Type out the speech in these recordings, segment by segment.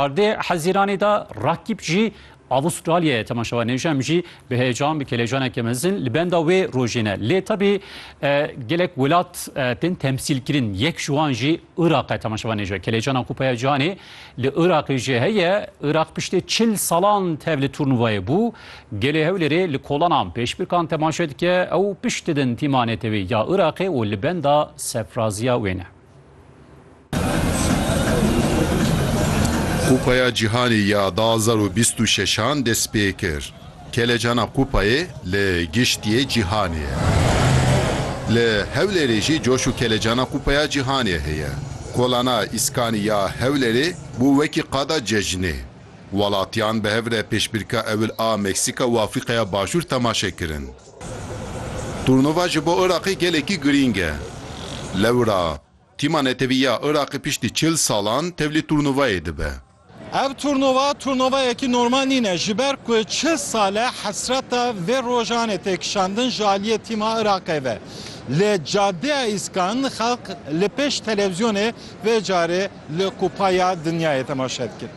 Erdê Hezîranê de Rakîp jî Avustralyayê temaşewa nêj em jî bi heyecan bi kelecaneke mezin li benda wê rojê ne. Lê tebî gelek welat tên temsîlkirin. Yek ji wan jî Iraq e temaşewa nêj e. Kelecana Kupaya Cihanê li Iraqê jê heye. Iraq piştê çil salan tev li turnuvayê bû. Gelê Hewlêrê li kolana pêşbirkan temaşe dike. Ew pişt didin tîma netewî ya Iraqê û li benda sefraziya wê ne. Kupaya Cîhanê ya du hezar û bîst û şeş an dest pê kir. Kelecana kupayê li giştiyê cîhanê ye. Li Hewlêrê jî coş û kelecana kupaya cîhanê heye. Kolana Îskanî ya Hewlêrê bû wekî qada cejnê. Welatiyan bi hev re pêşbirka ewil a Meksîka û Afrîkaya Başûr temaşe kirin. Turnûva ji bo Iraqê gelekî girîng e. Lewra Tîma Netewî ya Iraqê piştî çil salan tevlî turnûvayê dibe. Ev turnûva turnûvayekî normal nîne ji ber ku çil sal e hesreta vê rojan ê têkişandin ji aliyê Tîma Iraqê ve. Li Cadeya Îskan xelk li pêş televîzyonê vê carê li Kupa ya Dinyayê temaşe dikin.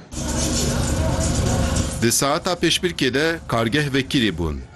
Di saeta pêşbirkê de kargeh vekirî bûn.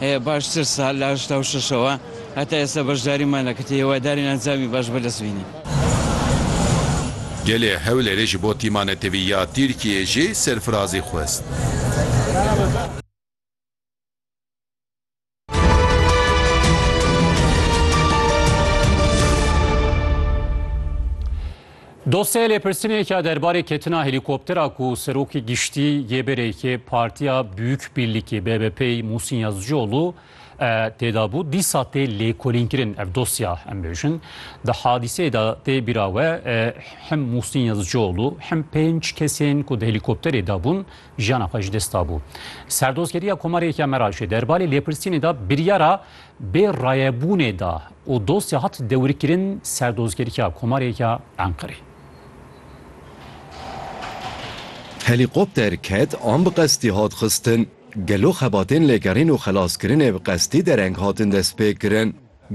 Baştir sal li heşta û şeşewa heta êsta beşdarî mane ku têhewadarên encamî baş bi dest bînin. Gelê Hewlêrê ji bo tîma netewî ya Tirkiyeyê jî serfirazî xwest. Dosyaya lêpirsîneke derbarê ketina helîkoptera ku Serokê Giştî yê Berêkê Partiya Büyük Birlikê BBP'ê Muhsin Yazıcıoğlu têda bû dîsa tê lêkolînkirin ev dosya em bêjin. Di hadîseyê de tê bîra we him Muhsin Yazıcıoğlu him pênc kesên ku di helîkopterê de bûn jiyana xwe ji dest dabû. Serdozgeriya Komarê Yekê Meraşê derbarê lêpirsînê de biryara Bi rayebûnê de û dosya hat dewirkirin ser dozgerîya Komarê ya Enqerê. Helîkopter ket an bi qestî hat xistin? Gelo xebatên lêgerîn û xelaskirinê bi qestî dereng hatin destpêkirin?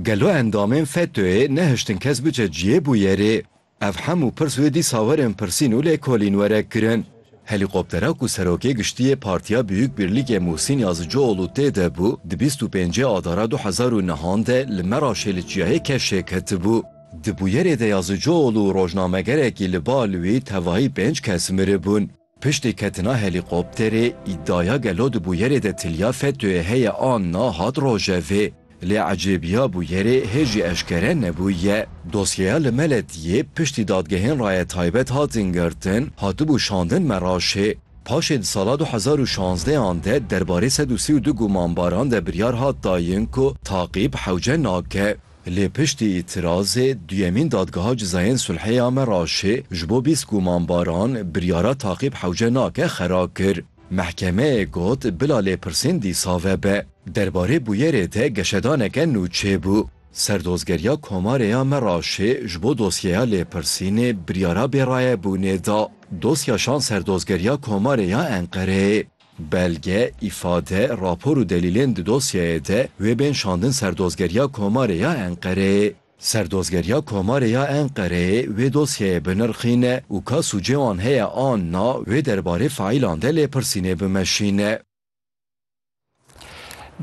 Gelo endamên FETÖ'yê nehiştin kes biçe cihê bûyerê? Ev hemû pirs wê dîsa werin pirsîn û lêkolîn were kirin. Helîkoptera ku Serokê Giştîyê Partiya Biyûk Birlîgê Muhsîn Yazicioğlu tê de bû, di bîst û pêncê Adara du hezar û nehan de li Meraşê li çiyayê Keşê ketibû. Di bûyerê de Yazicioğlu û rojnamegerekî li ba li wî tevahî pênc kes miribûn. Piştî ketina helîkopterê, îdaya gelo di bûyerê de tiliya FETÖ'yê heye an na hat rojevê. Lê ecêbiya bûyerê hê jî eşkere nebûye. Dosyeya li me letiyê piştî dadgehên raye taybet hatin girtin, hatibû şandin Meraşê. Paşê di sala du hezar û şazdeh an de derbarê sed û sî û du gumanbaran de biryar hat dayin ku taqîb hewce nake. Lê piştî îtirazê duyemîn Dadgeha Cizayên Sulhê ya Meraşê ji bo bîst gumanbaran biryara Taqîb Hewce nake xera kir. Mehkemeyê got bila lêpirsîn dîsa vebe. Derbarê bûyerê de geşedaneke nû çêbû. Serdozgeriya Komarê ya Meraşê ji bo dosyeya lêpirsînê biryara bêrayebûnê da. Dosya şand Serdozgeriya Komarê ya Enqereyê. Belge, îfade, rapor û delîlên di dosyeyê de wê bên şandin ser Dozgeriya Komarê ya Enqereyê. Serdozgeriya Komarê ya Enqereyê wê dosyeyê binirxîne û ka sûcê wan heye an na, wê derbarê faîlan de lêpirsînê bimeşîne.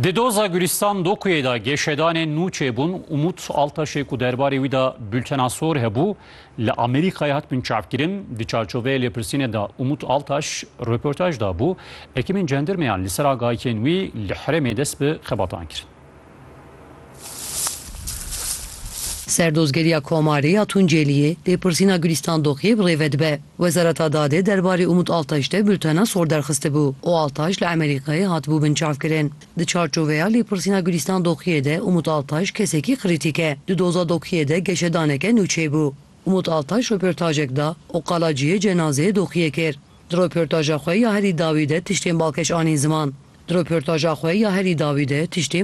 Di doza Gulîstan Dokuyê de geşedanên nû çêbûn. Umut Altaşê ku derbarê wî de Bultena Sor hebû, Li Amerîkayê hatibûn çavkirin. Di çarçoveyê lêpirsînê de Umut Altaş röportaj dabû. Ekîmên cendirmeyan li ser agahikên wî li herêmê dest bi xebatan kirin. Serdozgeriya Komarê ya Tunceliyê lêpirsîna Gulîstan Doxiyê bi rê ve dibe. Wezareta Dadê derbarê Umut Altaş de bultena sor derxistibû û Altaş li Amerîkayê hatibû binçavkirin. Di çarçoveya lêpirsîna Gulîstan Doxiyê de Umut Altaş kesekî krîtîk e. Di doza Doxiyê de geşedaneke nû çêbû. Umut Altaş roportajek da û qala cihê cenazeyê Doxiyê kir. Di roportaja xwe ya herî dawî de tiştên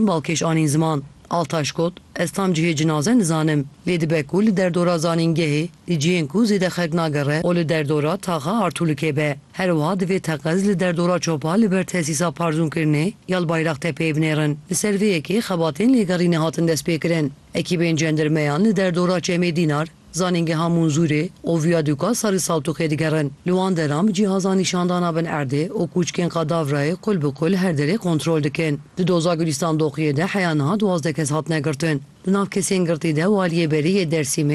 balkêş anîn ziman. Altaş got, Ez tam cihê cinaze nizanim, lê dibe ku li derdora zanîngehê, di cihên ku zêde xelk nagere û li derdora taxa Artûlikê be. Her wiha divê teqez li derdora Çopa li ber tesîsa parzûnkirinê ya li Bayraxtepeyê binêrin. Li ser vê yekê xebatên lêgerînê hatin destpêkirin. Ekîbên cendirmeyan li derdora Çemê Dînar, Zanîngeha Munzûrê û Vîyadûka Sarî Saltûqê digerin. Li wan deram cîhaza nîşandana bin erdê û kûçkên Qadavrayê qul bi qul her derê kontrol dikin. Di doza Gulîstan Doqiyê de heya niha duwazdeh kes hatine girtin. Di nav kesên girtî de Waliyê Berê yê Dêrsîmê,